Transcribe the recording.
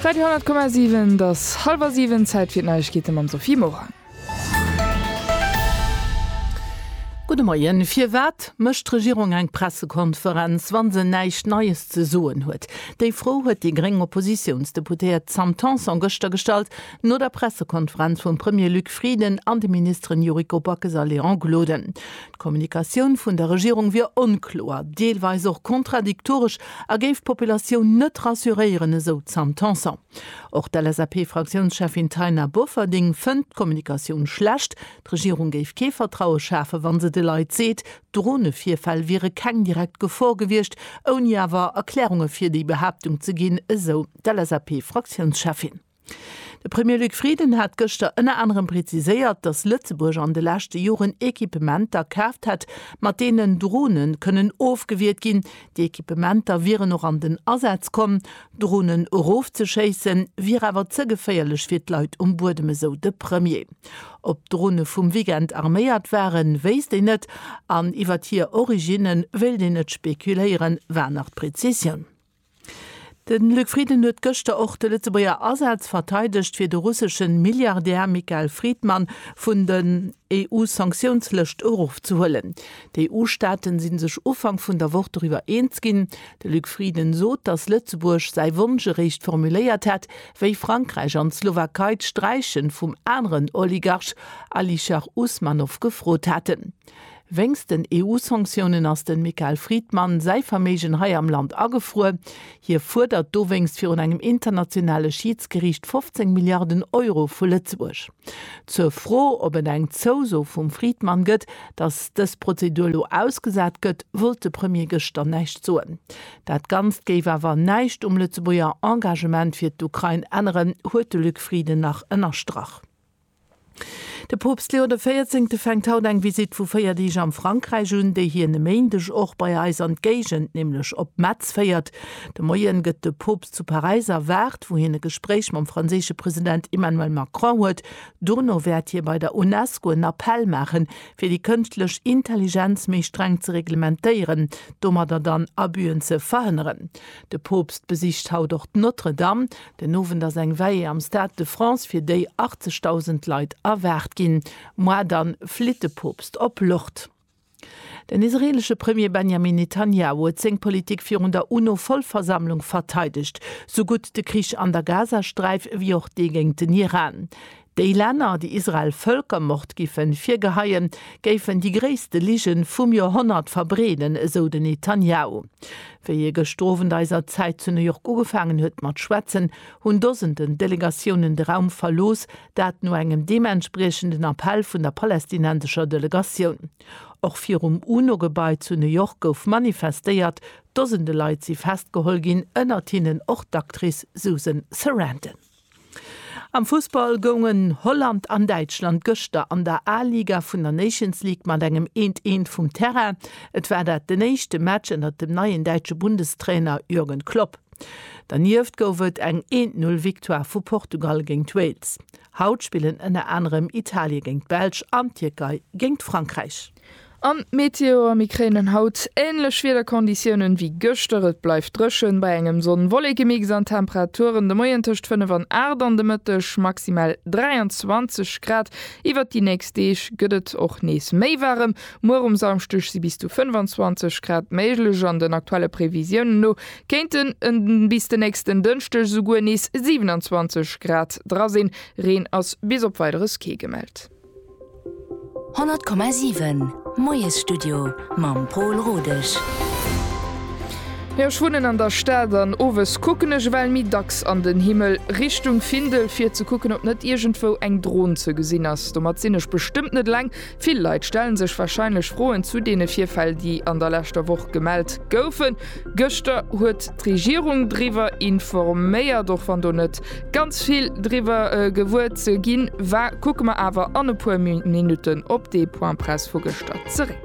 Radio 10,7 Et ass hallwer siwen, Zäit fir d'Neiegkeete mam Sophie Morang. Gudde Moien. Firwat mécht d'Regierung eng Pressekonferenz, wa se näischt Neies ze soen huet? Déi Fro huet déi gréng Oppositiounsdeputéiert Sam Tanson gëschter gestallt, no der Pressekonferenz vum Premier Luc Frieden an de Ministeren Yuriko Backes a Léon Gloden. D'Kommunikatioun vun der Regierung wier onkloer, deelweis och kontradiktoresch a géif d'Populatioun net rassuréieren, esou d'Sam Tanson. Och d'LSAP-Fraktiounscheffin Taina Bofferding fënnt d'Kommunikatioun schlecht. D'Regierung géif kee Vertraue schafen, wa se de Leit seet, d'Drone-Virfäll wiere keng direkt Gefor gewiescht, ouni awer Erklärunge fir déi Behaaptung ze ginn, esou d'LSAP-Fraktiounscheffin. De Premier Luc Frieden hat gëschter ënner anerem preziséiert, datt Lëtzebuerg an de leschte Joren Equipementer kaaft hätt, mat deenen Drone kënnen ofgewiert ginn. Déi Equipementer wieren och an den Asaz komm. Dronen erofzeschéisse wier awer ze geféierlech fir d'Leit um Buedem, esou de Premier. Ob d'Drone vum Weekend arméiert waren, wéisst een net an iwwert hir Originne wéilt een net spekuléieren, war nach d'Prezisioun. De Luc Frieden huet gëschter och de Lëtzebuerger Asaz verteidegt, fir de russesche Milliardär Michael Friedman vun den EU-Sanktiounslëscht erofzehuelen. D'EU-Staaten si sech Ufank vun der Woch doriwwer eens ginn. De Luc Frieden sot, datt Lëtzebuerg säi Wonsch eréischt formuléiert hätt, wéi Frankräich an d'Slowakei d'Sträiche vum aneren Oligarch Alisher Usmanov gefrot haten. Wéinst den EU-Sanktiounen ass dem Michael Friedman säi Verméigen hei am Land agefruer. Hie fuerdert dowéinst virun engem internationale Schiidsgeriicht 15 Milliarden Euro vu Lëtzebuerg. Zur Fro, ob et eng Zouso vum Friedman gëtt, datt dës Prozedur elo ausgesat gëtt, wollt de Premier gëschter näischt soen. Dat Ganzt géif awer näischt um Lëtzebuerger Engagement fir d'Ukrain änneren, huet de Luc Frieden nach ënnerstrach. De Poopst Leo de Véierzéngte fänkt haut eng Visitt vu 4 Deeg am Frankräich un, déi hien e Méindeg och bei eis an d'Géigend, nämlech op Metz féiert. De Moien gëtt de Poopst zu Paräis erwaart, wou hien e Gespréich mam franséische President Emmanuel Macron huet. Dono wäert hie bei der UNESCO en Appell maachen, fir déi kënschtlech Intelligenz méi streng ze reglementéieren, domadder dann Abüen ze verhënneren. De Poopst besicht haut och d'Notre-Dame. Den Owend ass eng Veillée am Stade de France, fir déi 80.000 Leit erwaart ginn. Muar dann flitt de Poopst op Lourdes. Den israeelesche Premier Benjamin Netanjahu huet seng Politik virun der UNO-Vollversammlung verteidegt, sou gutt de Krich an der Gazasträif wéi och dee géint den Iran. Déi Länner, déi Israel Völkermord giffen virgeheien, géifen déi gréisste Ligen vum Joerhonnert verbreeden, esou den Netanjahu. Wéi ee gëschter Owend eiser Zäit zu New York ugefaangen huet mat schwätzen, hunn Dosenden Delegatiounen de Raum verlooss, dat no engem deementspriechenden Appell vun der palästinensescher Delegatioun. Och virum UNO-Gebai zu New York gouf manifestéiert, Dosende Leit si festgeholl ginn, ënnert hinnen och d'Actrice Susan Sarandon. Am Fussball goungen Holland an Däitschland gëschter an der A-Liga vun der Nations League mat engem eent eent vum Terrain. Et war dat den éischte Match ënnert dem neien däitsche Bundestrainer Jürgen Klopp. Dernieft gouf et eng eent Null Victoire vu Portugal géingt Wales. Haut spillen ënner anerem Italie géingt d'Belsch an d'Tierkei géingt Frankräich. An d'Meteoer, Mir kréinen haut änlech Wiederkonditiounen ewéi gëschter. Et bleift dréchen bei engem Sonn-Wollekemix an d'Temperaturen de Moien tëscht 5 an 8 an de Mëtteg maximal 23 Grad. Iwwert déi nächst Deeg gëtt et och nees méi waarem. Muer um Samschdeg si bis zu 25 Grad méiglech an den aktuelle Previsiounen no kéinten bis den nächsten Dënschdeg esouguer nees 27 Grad dra sinn. Reen ass bis op Weideres kee gemellt. 100,7 Moiesstudio mam Pol Rodesch. Jo, ech wunnen an der Stad an owes kucken ech ewell méi dacks an den Himmel, Richtung Findel, fir ze kucken, ob net iergendwou eng Dron ze gesinn ass. Domat sinn ech bestëmmt net eleng. Vill Leit stelle sech warscheinlech Froen zu deene Virfäll, déi an der leschter Woch gemellt goufen. Gëschter huet. D'Regierung driwwer informéiert. Och wann do net ganz vill driwwer gewuer ze ginn war, kucke mer awer an e puer Minutten op dee Point presse vu gëschter zeréck.